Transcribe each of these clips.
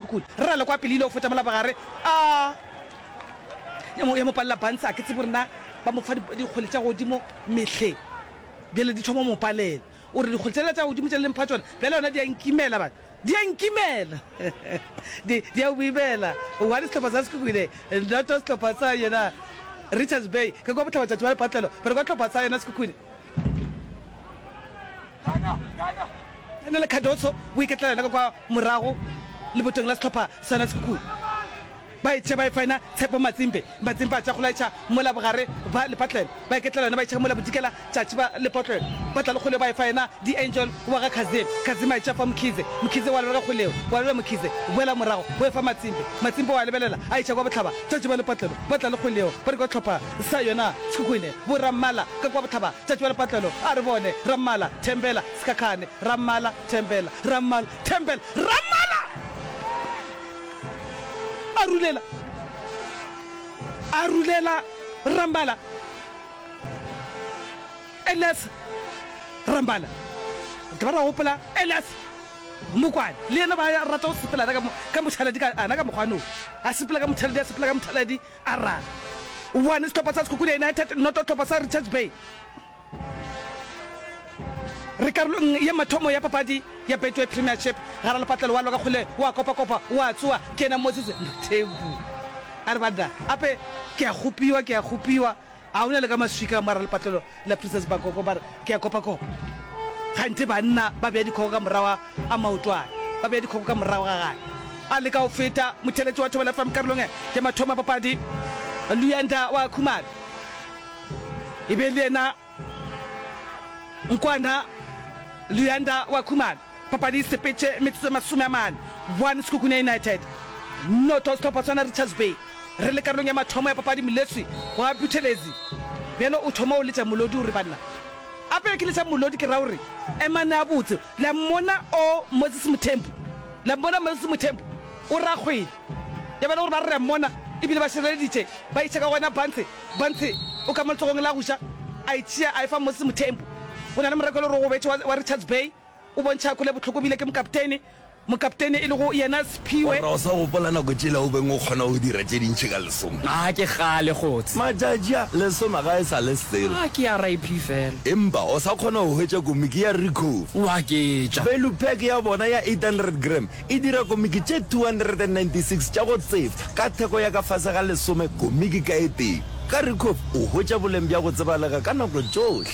Good. Re rale kwa pele ile o feta mola bagare a ya mo ya mo palela bantse a ke tsebo rena ba mo fa dikgole tša godimo mehle bjale di thoma mo palela o re dikgole tša tša godimo tša le mpha tšona bjale yona di a nkimela ba di a nkimela di di a buibela wa disehlopha sa sekukule not sehlopha sa yena Richards Bay ke kwa botlhaba tšatši ba le patlelo but kwa tlhopha sa yena sekukule ene le Cardoso o iketlela yona ka kwa Morago lebotong la sehlopha sa Nats Kukung, ba etše ba efa yena Tshepo Matsimpe. Matsimpe a tša go laetša mola bogare ba lepatlelo, ba iketlela yona ba išega mola bodikela tšatši ba lepotlelo. Ba tla le kgoleo ba efa yena D'Angel wa ga Kazim. Kazim a etša fa Mkhize. Mkhize wa lora kgoleo, wa lora Mkhize boela morago o efa Matsimpe. Matsimpe wa lebelela a etša kwa bohlaba tšatši ba lepatlelo. Ba tla le kgoleo ba re kwa sehlopha sa yona Sekhukhune bo Rammala ka kwa bohlaba tšatši ba lepatlelo. A re bone Rammala, Thembela, Sekhakhane, Rammala, Thembela, Rammala, Thembela, Rammala! Arulela, Arulela, Rammala, Elias, Rammala. Ke ba ra gopola Elias Mokwane, le yena ba rata go sepelana ka, ka mothaladi ka, ana ka mokgwa noo. A sepela ka mothaladi, a sepela ka mothaladi, a rala. One sehlopha sa Sekhukhune United, noto sehlopha sa Richards Bay. Re karolong ya mathomo ya papadi ya Betway Premiership, ga ra lepatlelo wa loka kgole wa kopa-kopa wa tsoa ke ena Moses Mthembu a re banna ape ke a gopiwa ke a gopiwa a o na le ka maswika mo ra lepatlelo la Princess Bakoko ba re ke a kopa-kopa kganthe banna ba beya dikgoko ka morago a maotwana ba beya dikgoko ka morago ga gane a leka go feta motheletši wa Thobela FM karolong ya mathomo ya papadi Luyanda wa khumalo E be e le yena Nkwana Luyanda wa Khumalo. Papadi e sepetše metsotso e masome a mane, 1 Sekhukhune United, 0 Sehlopha sona Richards Bay. Re le karolong ya mathomo ya papadi, Moleswi wa Buthelezi bjalo o thoma o letša Molodi o re, Banna, a pele ke letša Molodi ke ra o re, Emane gabotse, la mmona o Moses Muthembu? La mmona Moses Muthembu? O rakgwele. Ebile gore ba re la mmona, ebile ba šireleditše, ba iša ka gona Banse. Bontshe o ka mo letsogong la go ja, a e tšea a e fa Moses Muthembu. Go na le morako e le gore o gobetše wa Richards Bay, o bontšha Akule bohloko ebile ke mokapteine, mokapteine e lego yena Sphiwe. O re o sa gopola nako tšela o beng o kgona go dira tše dintši ka lesome? Ga ke kgale kgots. Matšatši a, lesome ga e sa le selo. A ke ya rip fela. Empa o sa kgona go hwetša komiki ya Ricoh? Wa ke tša. Value pack ya bona ya 800 gram E dira komiki tše 296 tša go tseba ka theko ya ka fase ga lesome komiki ka e tee. Karikhof o hwetša boleng bja go tsebalega ka nako tšohle.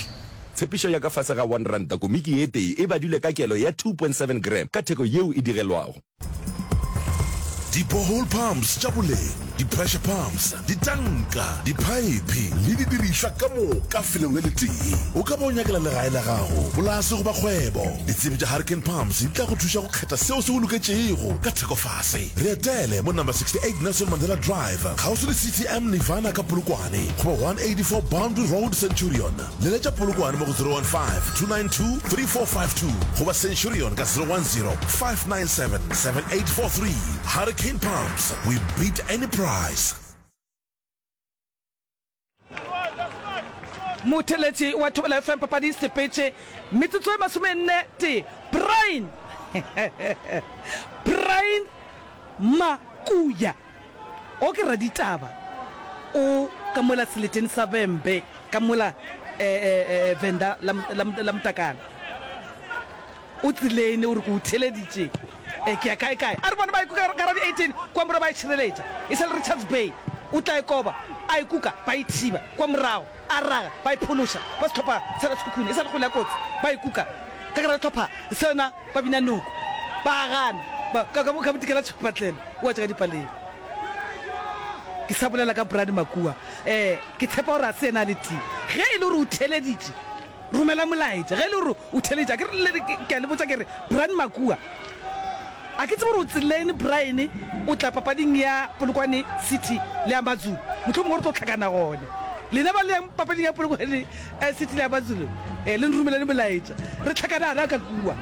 Tshepišo ya ka fase ga R1 komiki e tee e badilwe ka kelo ya 2.7 gram ka theko yeo e digelwago. Di-borehole pumps tša boleng. di-pressure pumps, ditanka, diphaephe le didirišwa ka moka felong le letee. O ka ba o nyakela legae la gago, polase goba kgwebo. Ditsebi tša Hurricane Pumps di tla go thuša go kgetha seo se go loketšego ka thekofase. Re etele mo Number 68 Nelson Mandela Drive, kgauswi le CTM Nirvana ka Polokwane, goba 184 Boundary Road, Centurion. Leletša Polokwane mo go 015-292-3452 goba Centurion ka 010-597-7843. Hurricane Pumps, we beat any price. motheletši wa thobela fm papadi sepetše metsotso e masomenne tee brian brian makuya Ok raditaba o ka mola seleteng sa Vhembe ka mola eh Venda la Mutakala o tsileni uri ke u theleditše eh ke ya kae kae a re bona ba e kuka ka ra di 18 kwa morago ba e šireletša e sa le Richards Bay o tla e koba a e kuka ba e thiba kwa morago A raga, ba iphološa ba sehlopha sela sekhukhune e sa le kgole ya kotsi, ba ikuka ka gare ga sehlopha sena, ba bina noko, ba gagana, ba ka ka bodikela tšhipatlelo o wa tša ka dipaleng. Ke sa bolela ka Brady Makua, ee, ke tshepa gore ga se yena a le tee, ge e le gore o theeleditše. romela molaetša. Ge e le gore o theletše, a ke re, le, ke, ke a le botša ke re, Bran Makua, a ke tsebe gore o tseleng, Brian, o tla papading ya Polokwane City le ya Mazulu. Mohlomongwe re tlo hlakana gone. Lena ba le yang papading ya Polokwane eh, City le ya Mazulu, eh, le nromelele molaetša. Re hlakana gana ka kua.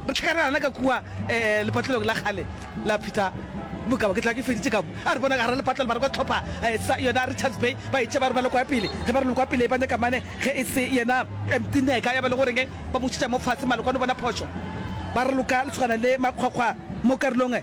Re hlakana gana ka kua eh, lepatlelong la kgale. La phitha mokaba ke tla ke feditše ka mo a re bona gara lepatla le bare kwa tlhopha sa yona Richards Bay ba itše ba re ba le kwa pele ge ba re le kwa pele ba nyaka mane ge e se yena Mtineka ya ba le goreng ba mo šetša mo fase Malokwano bona phošo ba re loka lesogana le makgwakgwa mo karolong ya